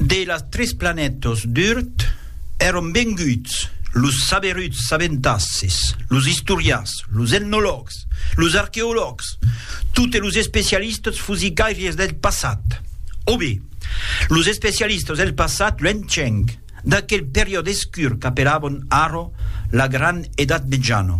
De las tres planètas d'Urt èron venguts los saberuts sabentasses, los istorians, los etnològs, los arqueològs, totes los especialistas fusicairies del passat. O be, los especialistas del passat luenhenc. d'aquel periòde escur qu'apelabon arro la gran Edat Metjana,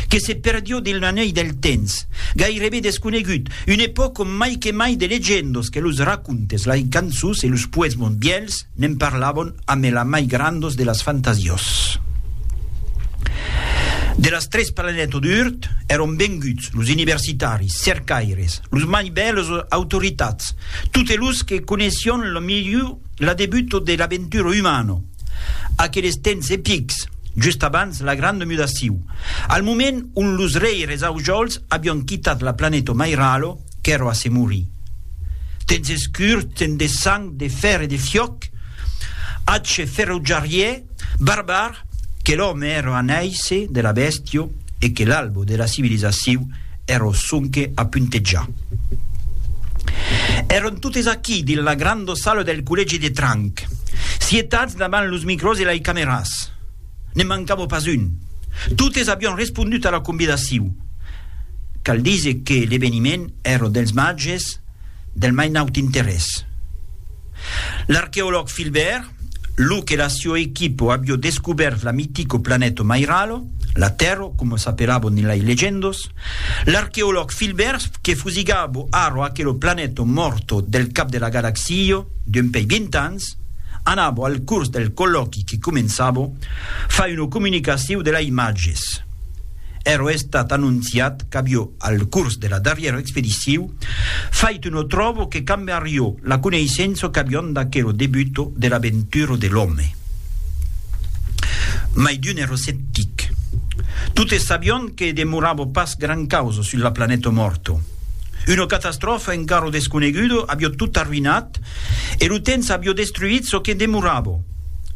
que se perdió dins l'anèl del temps, gairebe desconegut, una epòca ont mai que mai de legendas que los racontes, lai cançons e los poesmons vièlhs ne'n parlabon amé la mai grandas de las fantasias. De las tres planètas d'Urt èron venguts los universitaris, cercaires, los mai bèls autoritats, totes los que coneissión la milhor L'adebuto de l'aventura umana, aqueles temps epics, just abans la granda mudaciu, al moment ont los rèires aujols avián quitat la planeta Mairalo, qu'èra a se morir. Temps escurs, temps de sang, de fèr e de fiòc, atge ferotjariè, barbar, que l'òme èra a nàisser de la bèstia e que l'albo de la civilizaciu Ero sonque a puntejar. Èron totes aquí, dins la granda sala del collègi de Tranc, sietats davant los micròs e lei cameras. Ne mancava pas un. Totes avián respondut a la convidaciu. Cal díser que l'eveniment èra dels màges del mai naut interès. L'arqueològ Philbert, lo que la sua equipo avió descubèrt la mitico planèto Mairalo, la Tèrro coma s'apelabo nilai legendos, l'arqueològ Philbert que fusigabo arro aquelo planèto morto del cap de la galaxio d'un pei vint ans, anabo al curs del collòqui que començabo fai una comunicaciu de la imatges. Ero estat anonciat qu'avió al curs de la darrièra expediciu Fait no tròbo que cambe arrio la coneissença qu'avion d'aquero debuto de l'aventura de l'òme. Mai d'un ero sceptic. Totes sabion que demorava pas gran causa sus la planeta mòrta. Una catastròfa encara desconeguda avió tot arruinat e lo temps avió destruit çò que demorava.